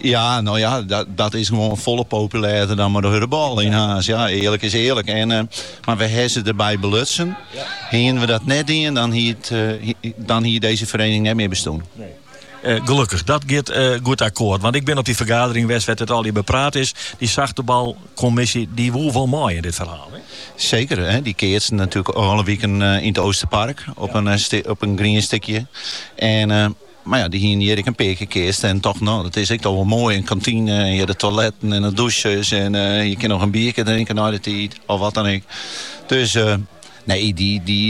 Ja, no ja, dat is gewoan folle populêrder dan mei de hurdebal yn Harns. Ja, earlik is earlik. En, eh, mar we hawwe se derby belutsen. Hienen we dat net dien, dan hie it, eh, dan hie dizze feriening net mear bestûn. Nee. Eh, gelukkig, dat giet eh, goed akkoord. Want ik bin op dy fergadering west wêr't it al hjir bepraat is. Dy sachtebalkommisje, dy woe wol mei yn dit ferhaal. Hè? Seker, hè? dy keatsten natuerlik alle wiken eh, yn it Oosterpark op, in, op in grien stikje. En Mar ja, dy hiene hjir ek in pear kear keatst en tochten, no, dat is ek dochs wol moai, in kantine en hjir de toiletten en de dûsjes en je kinne noch in bierke drinke nei de tiid of wat dan ek. Dus nee, dy, dy,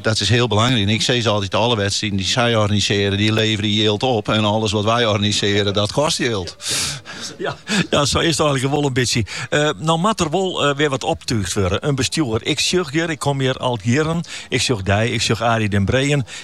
dat is hiel belangryk. En ik sis altyd, alle wedstriden dy't sy organisearje, dy leverje jild op en alles wat wy organisearje, dat kost jild. Ja, ja, sa is it eigenlik wol in bytsje. No moat der wol wer wat optuucht wurde, in bestjoer. Ik sjoch hjir, ik kom hjir al jierren, ik sjoch dy, ik sjoch Arie den Breejen,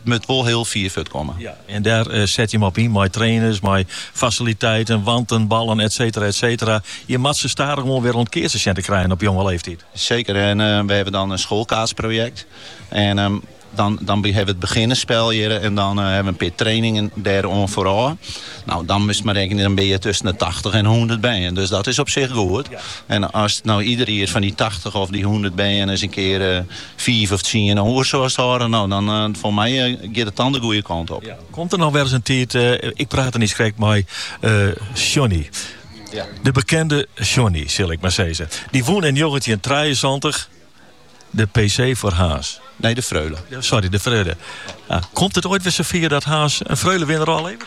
It moat wol hiel fier fuortkomme. Ja, en dêr set jim op yn mei trainers, mei fasiliteiten, wanten, ballen, etsetera, etsetera. Je moat se stadichoan wol wer oan it keatsen sjen te krijen op jonge leeftiid. Seker, en we hawwe dan in skoalkeatsprojekt. En dan dan hawwe we it beginnersspel hjir en dan hawwe we in pear trainingen dêr oan foarôf. Nou, dan moatst mar rekenen, dan bin je tusken de tachtich en hûndert bern. Dus dat is op sich goed. En as no ider jier fan dy tachtich of dy hûndert bern ris in kear Fiif of tsien oer soast hâlde. No, dan foar my giet it dan de goede kant op. Komt der noch wer ris in tiid, ik prate niiskrekt mei Sjonny. Ja. De bekende Sjonny, sil ik maar sizze. Dy wûn yn njoggentjin trijeënsantich de PC foar Harns. Nee, de Freule. Sorry, de Freule. Ah, komt it oait wer safier dat Harns in Freule-winner ôfleveret?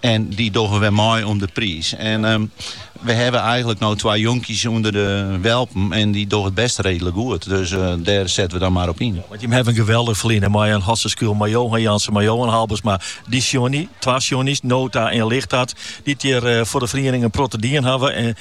En dy dogge wer mei om de priis. En ehm, we hawwe eigenlik no twa jonkjes ûnder de welpen en dy dogge it bêst reedlik goed. Dus eh, dêr setten we dan mar op yn. Want jimme hawwe in geweldich ferline mei in Hotze Schuil, mei Johan Jansen, mei Johan Halbesma, dy Sjonny, twa Sjonnys, Nota en Lighthart, dy't hjir eh, foar de feriening in protte dien hawwe en